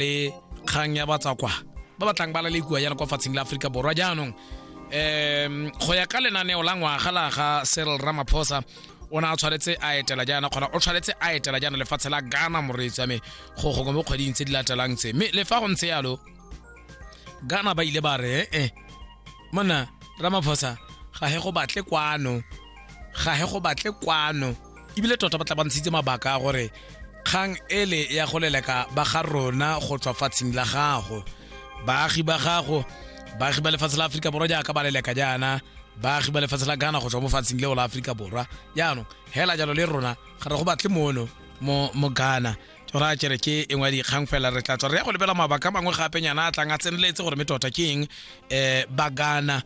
le kgang ya batsakwa ba ba tlang ba la le kua yana kwa fatsheng la aforika borwa jaanong um go ya ka lenaneo la ngwaga la ga seril ramaphosa o ne a tshwanetse a etela jaana kgona o tshwanetse a etela jaana lefatshe la ghana moreetsi wa me go gongwe mo kgweding tse di latelang tse mme le fa go ntse yalo ghana ba ile ba re ee eh, monna ramaphosa ga he go batle kwano ga he go batle kwano ebile tota ba tla ba ntshitse mabaka a gore kgang ele ya go leleka ba ga rona go tswa fatsheng la gago baagi ba gago baagi ba lefatshe la aforika borwa jaaka ba leleka jaana baagi ba lefatshe la ghana go tswa mo fatsheng leo la aforika borwa jaanong hela jalo le rona ga re go batle mono mo mo ghana tsora kere ke engwe ya dikgang fela re tla tswa re ya go lebela mabaka mangwe gape nyana a tlang a tseneletse gore me tota ke eng um ba ghana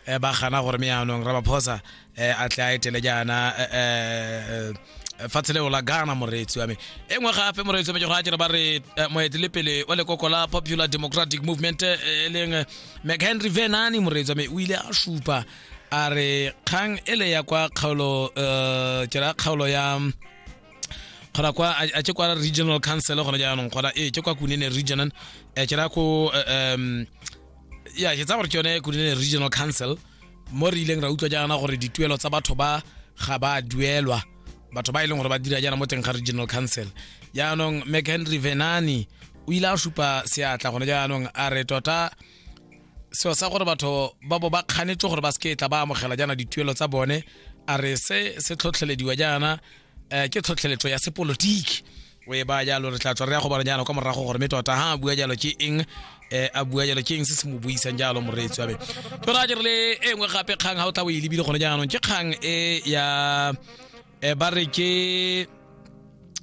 eh, ba gana gore me yaanong ramaphosa eh, a tle a etele jaana eh, eh, eh, fatshe leo la ghana moreetsi wa me e nngwe gape moreetsi wa me ke go a kere ba re eh, moetelepele wa lekoko la popular democratic movement eh, e leng eh, mchenry venani moreetsi wa me o ile a supa a re kgang ele ya kwa kgaolo eh, ke ra kgaolo ya gona kwa a a tše kwa regional council gona jaanong gona ee tše kwa kunene regional eh, ke ra ko eh, em, ya ke tsa gore ke yone kunene regional council mo re ileng ra utlwa jaana gore dituelo tsa batho ba ga ba duelwa batho ba e leng gore ba dira jaana mo teng ga regional council jaanong mchenry venani o ile a supa seatla gone jaanong a re tota seo sa gore batho ba bo ba kganetse gore ba seke tla ba amogela jaana dituelo tsa bone a re se se tlhotlhelediwa jaana um ke tlhotlheletso ya sepolotiki o e baya jalo re tla tswa re ya go bara jalo kwa morago gore mme tota ha a bua jalo ke eng eh, a bua jalo ke eng se se mo buisang jalo moreetsi wa me ke ra jere le e nngwe gape kgang ga o tla o e lebile gone jaanong ke kgang e ya eh, ba re ke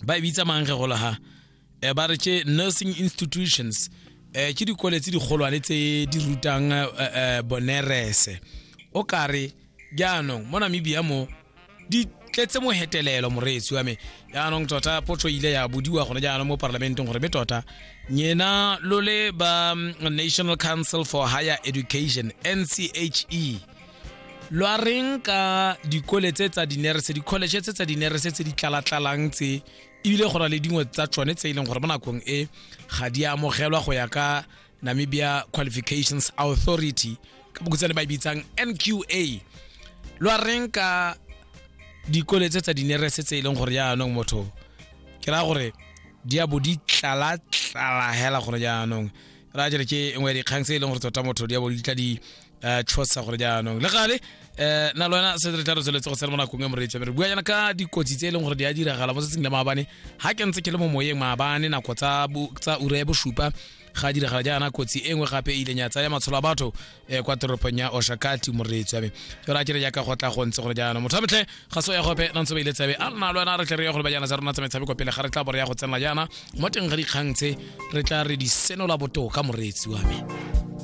ba e bitsa mange golo ha eh, ba re ke nursing institutions eh, ke dikole tse digolwane tse di rutang eh, eh, bonerese o kare jaanong mo namibia mo di tletse mohetelelo moreetsi wa me jaanong tota potso e ile ya bodiwa gone jaanong mo parlamenteng gore be tota nyena lo le ba mm, national council for higher education nche lo a reng ka dikole tse tsa dinerese di-college tse tsa dinerese tse di tlalatlalang tse ebile go na le dingwe tsa tsone tse e leng gore mo nakong e ga di amogelwa go ya ka namibia qualifications authority ka bokutsane ba e bitsang nqa lo a reng ka dikole tse tsa dinerese tse e leng gore jaanong motho ke raya gore di a bo di tlalatlala hela gore jaanong ra jere ke nngwe ya dikgang tse e leng gore tota motho di a bo di tla di um tshosa gore jaanong le gale um na le wena se re tla re tsweletse go sena mo nakong e moreetsa re bua jaana ka dikotsi tse e leng gore di a diragala mo tsatsing la maabane ga ke ntse ke le mo moyeng maabane nako tsa ura ya bosupa ga diragala jaana kotsi e nngwe gape e ileng ya tsaya matsholo a batho um kwa toropong ya oshakati moreetsi wa me jalo a kere jaaka go tla go ntse gore jaana motho a metlhe ga so ya gope nantse ba ile tsabe a lona le wena re tle re ya gore ba jaana tsa rona tsa metshameko pele ga re tla bore ya go tsenela jaana mo teng ga dikgang tse re tla re di senola botoka moreetsi wa me